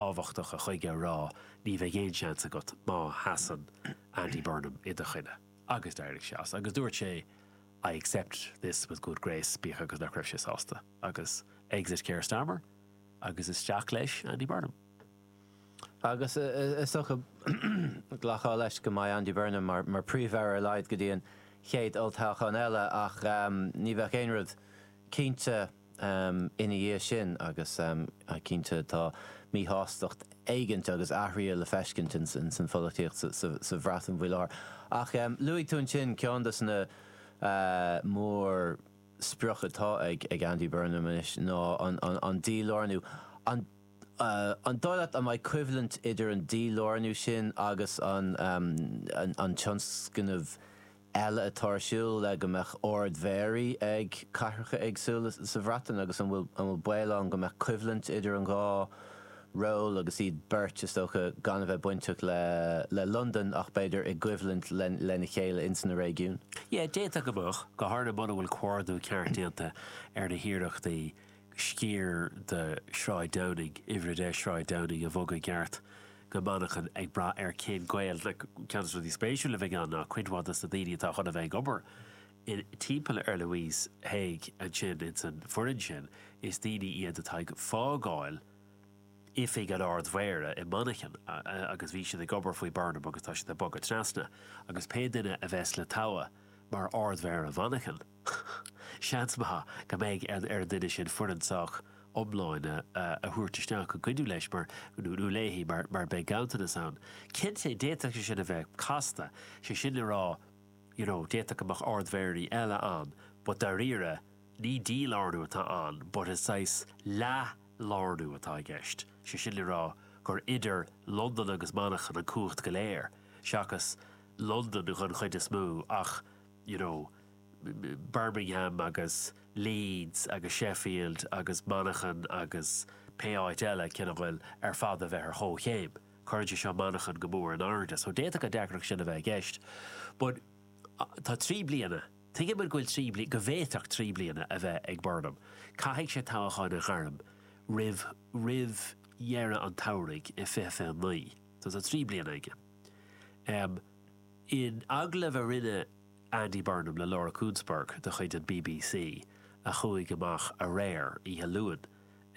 tábhachtacha chuige a rá ní bheidh aon seans agat má sheasann Andy Burnham i do choinne agus d'éirigh sé as agus dúirt sé I accept this with good grace bíodh agus nach raibh sé sásta agus exit Keir Starmer agus isteach leis Andy Burnham. Agus is dócha glacfá leis go mbeidh Andy Burnham mar mar Príomh-Aire ar laghad go dtí an chéad olltoghchán eile ach ní bheadh aon rud cinnte ina dhiaidh sin agus cinnte tá míshástacht éigint agus athruithe le feiscint ins an pholaitíocht sa Bhreatain faoi láthair. Ach luaigh tú ansin ceann dos na mórsprioc atá ag Andy Burnham anois ná an dílárnú. An dóigh leat an mbeidh coimhlint idir an dílárnú sin agus an tionscnamh eile atá ar siúl le go mbeadh Ard Mhéaraí ag cathracha éagsúla sa Bhreatain agus an bhfuil an bhfuil baol ann go mbeadh coimhlint idir an dhá ról agus iad beirt is dócha gan a bheith bainteach le le Londain ach b'fhéidir i gcoimhlint le lena chéile ins na réigiún? Yeah, d'fhéadfadh go mbeadh, go háirithe muna bhfuil comhordú ceart déanta ar na hiarrachtaí sciar de Shráid Downing, Uimhir 10 Sráid Downing, a bhogadh i gceart go Manchain, ag brath ar cén gaol. Ceann des rudaí spéisiúil a bheidh ann ná cuid mhaith dos na daoine atá chun a bheith ag obair in timpeall ar Louise Haigh ansin ins an foireann sin, is daoine iad atá ag fágáil oifig an Ard Mhéara i Manchain agus bhí siad ag obair faoi Burnham agus tá siad ag bogadh trasna agus pé duine a bheas le toghadh mar Ard Mhéara Mhanchain, Seans maith go mbeidh ar an duine sin foireann sách iomláin a thabhairt isteach le cuidiú leis nó léi mar beidh ganntanas ann. Cinnte, d'fhéadfadh sé sin a bheith casta, sé sin le rá you know d'fhéadfadh go mbeadh ardmhéaraí eile ann but dáiríre ní dílárnú atá ann but is saghas leathlárnú atá i gceist, sé sin le rá gur idir Londain agus Manchain an cumhacht go léir, seachas Londain dhon chuid is mó ach you know, Birmingham agus Leeds agus Sheffield agus Manchain agus pé áit eile, kin' a' bhfuil, ar fad a bheith ar chomhchéim. Cuireann sé seo Manchain go mór in airde. So d'fhéadfadh an deacracht sin a bheith i gceist. But tá trí bliana, tuigim go bhfuil trí bliana, go bhféadfadh trí bliana a bheith ag Burnham. Caithfidh sé toghchán a ghairm roimh, roimh dheireadh an tsamhraidh i 2029. So tá trí bliana aige. In agallamh a rinne Andy Burnham le Laura Kuenssberg de chuid an BBC a chuaigh amach aréir oíche Luain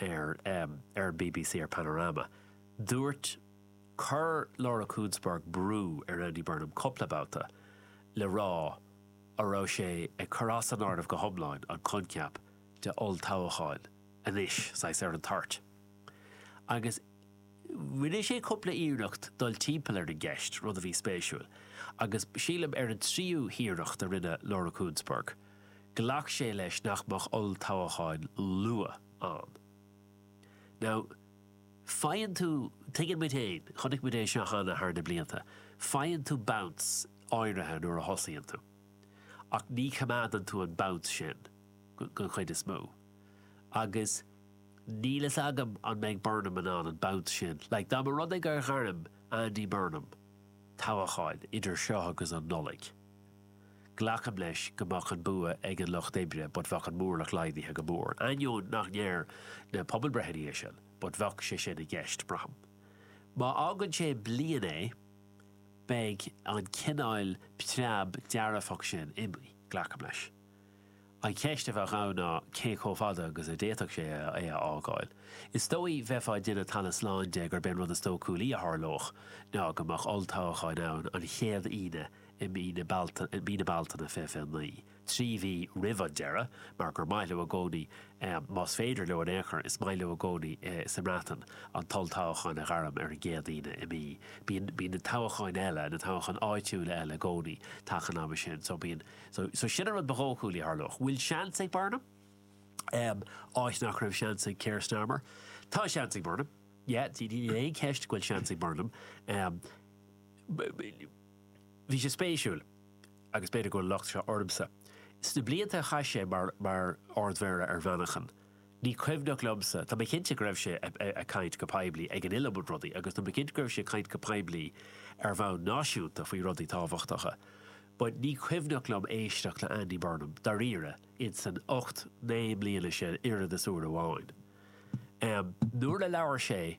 ar ar an BBC ar Panorama, dúirt Chuir Laura Kuenssberg brú ar Andy Burnham cúpla babhta le rá a raibh sé ag cur as an áireamh go hiomláin an coincheap de olltoghchán anois saghas ar an toirt agus Rinne sé cúpla iarracht dul timpeall ar an gceist, rud a bhí spéisiúil, agus sílim ar an tríú hiarracht a rinne Laura Kuenssberg, ghlac sé leis nach mbeadh olltoghchán luath ann. Now, faigheann tú, tuigeann muid féin, chonaic muid é seo cheana thar na blianta, faigheann tú bounce áirithe nuair a thosaíonn tú, ach ní choimeádann tú an bounce sin den chuid is mó, agus. Níl fhios agam an mbeidh Burnham in ann an bounce sin. Like, dá mba rud é gur ghairm Andy Burnham toghchán idir seo agus an Nollaig, glacaim leis go mbeadh an bua ag an Lucht Oibre but bheadh an móramh laghdaithe go mór, in ainneoin nach ndeir na pobalbreitheanna é sin, but bheadh sé sin i gceist, braithim. Má fhágann sé bliain é, beidh an cineáil preab dearfach sin imithe, glacaim leis. An cheist a bheadh ann ná cé chomh fada agus a d'fhéadfadh sé é a fhágáil. Is dóigh bheifeá ag déanamh talamh slán de gurb é an rud is dóchúlaí a tharlódh ná go mbeadh olltoghchán ann an chéad Aoine i mí, mí na Bealtaine, 20, 29, trí mhí roimh an deireadh, mar gur maith leo i gcónaí, más féidir leo in aon chor, is maith leo i gcónaí sa mBreatain an t-olltoghchán a ghairm ar an gcéad Aoine i mí. Bíonn na toghcháin eile, na toghcháin áitiúla eile i gcónaí taca an ama sin, so bíonn. So, so sin an rud ba dhóchúla a tharlódh. Bhfuil seans ag Burnham? Um, áit nach raibh seans ag Keir Starmer. Tá seans ag Burnham. Yeah, ní, ní, níl aon cheist go bhfuil seans ag Burnham. Um, b- b- bhí sé spéisiúil, agus b'fhéidir go bhfuil an locht seo ormsa. Sna blianta a chaith sé mar, mar Ard-Mhéara ar Mhanchain, Ní cuimhneach liomsa, tá mé cinnte go raibh sé ag caint go poiblí ag an iliomad rudaí agus tá mé cinnte go raibh sé ag caint go poiblí ar bhonn náisiúnta faoi rudaí tábhachtacha but ní cuimhneach liom éisteacht le Andy Burnham dáiríre in san ocht, naoi mbliana sin oiread is uair amháin. Nuair a labhair sé.